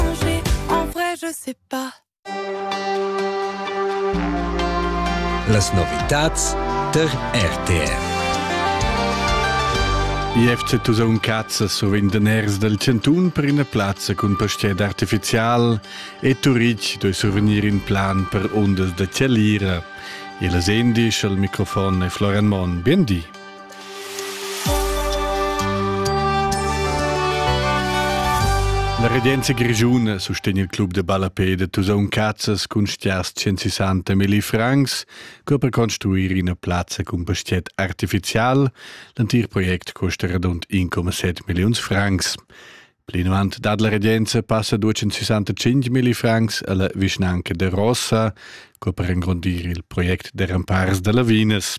changer, en vrai je sais pas. Las novitats tar RTR. IFC Tusaun Cazza sovent daners dal Cantun per ina plazza cun pastier artificial e Turitg doi survegnir in plan per ondas da Tschellira. E la Sendi al microfon è Florian Monn. Bien di. La regenza grischuna sustegn il club de ballapé de Tusaun Cazzas cun stias 160 milli francs co per construir ina plazza cun pastiet artificial. L'antir project costa radund 1,7 milliuns francs. Plinavant dat la regenza passa 265 milli francs alla vischnanca de Rossa co per engrondir il project de rampars da lavinas.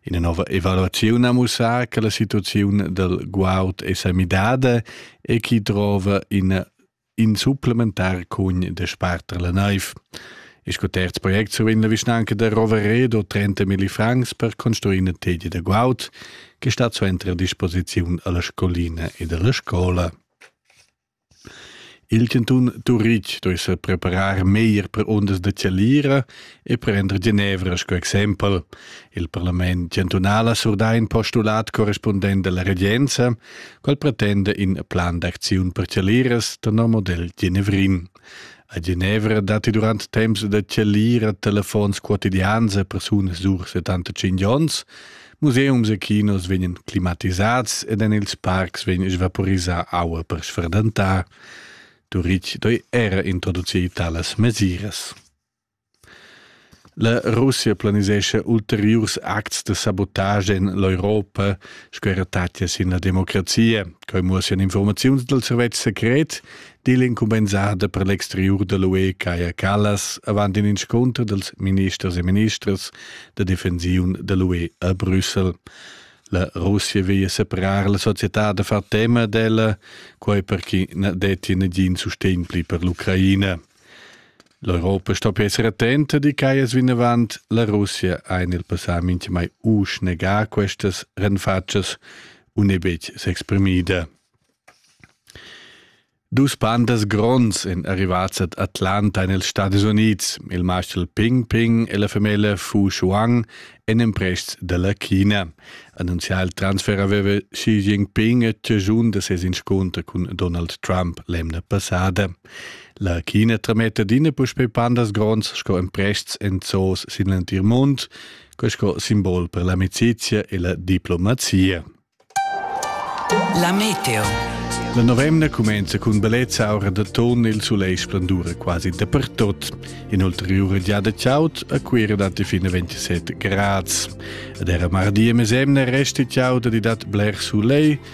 Ina nova evaluaziun ha mussà che la situaziun del guaud è sa midada e chi trova in in supplementar cugn de sparter la naiv. E sco terz project survegn la vischnanca da Roveredo 30 milli francs per construir una tegia da guaud che sta suenter a disposiziun alla scolina ed alla scola. Il cantun Turitg deve se preparar meglier per ondas da Cialira e prender Genevra sco exempel. Il parlament chantunal ha surdà in postulat correspondent della regenza, qual pretende in plan d'acziun per Cialiras da no model genevrin. A Genevra datti durant temps da chalir a telefons quotidians a persunas dur 75 onns, museums e kinos vegnan climatisads ed en ils parcs vegn svaporisà aua per sfradantar. Turitg doi era introducir talas mesiras. La Russia planisescha ulteriurs acts da sabotage en l'Europa sco era tatga sin la democrazia. Quai muossian informaziuns dal servetsch secret, di l'incumbensada per l'exteriur da l'UE Kaja Kallas avant in inscunter dals ministers e ministras da defensiun da l'UE a Brüssel. La Russia veglia separar la società da far tema d'ella, quai per chi na detti nagin sustegn pli per l'Ucraina. L'Europa sto esser attenta di che es vinavant la Russia ein il passà minchemai u schnegar questas renfatschas u ne betg s'exprimida. Dus pandas gronds en arrivats ad Atlanta en els Stati Units, il marschal Ping Ping e la femella Fu Shuang, en emprests dalla China. Annunzià il transfer aveva Xi Jinping a tgiagiun da ses inscunter cun Donald Trump l'emna passada. La chine trametta adina puspei pandas gronds sco emprests en zoos sin l'entir mund, quei sco simbol per l'amicizia e la diplomazia. La meteo. La novemna cumenza cun bellezza aura d'atun il sulegl splendura quasi dapertut. In'ulteriura giada chaud a Cuira datti fino 27 gradi. Ed era mardi e mesemna resta chaud e dat bler sulegl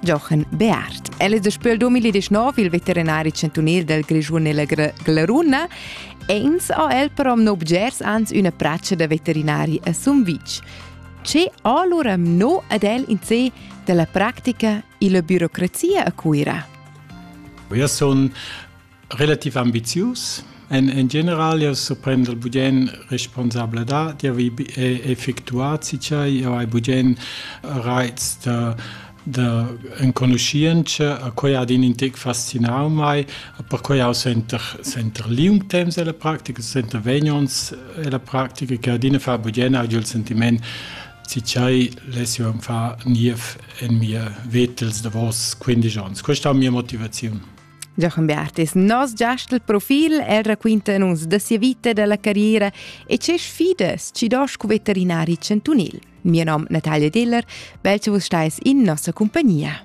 Jochen Beart. El è daspö 2019 il veterinari chantunil del Grischun e la Glaruna e ins ha el però no bgers ans üna praccia da veterinari a Sumvitg. Ce ha allora mno ad el in sé della practica e la burocrazia a Cuira? Eu sun Relativ ambizius èn en general jau surprender bugen responsabladad d'avair effectuà sincer jau hai bugen raits da da enconuschientscha a quai ad in intec fascinau mai perquai jau senter senter liung temps ella practica senter vegn ons ella practica che adina fa bugen augi il sentiment sincer less jau far niev en mia vetels davos quindisch onns questa è mia motivaziun Jochen Bertis, nos giast il profil el raquinta nus da sia vita e dalla carriera e tge sfidas ci dos cu veterinari chantunil. Mio nom Natalia Diller, bel che vus stais in nossa compagnia.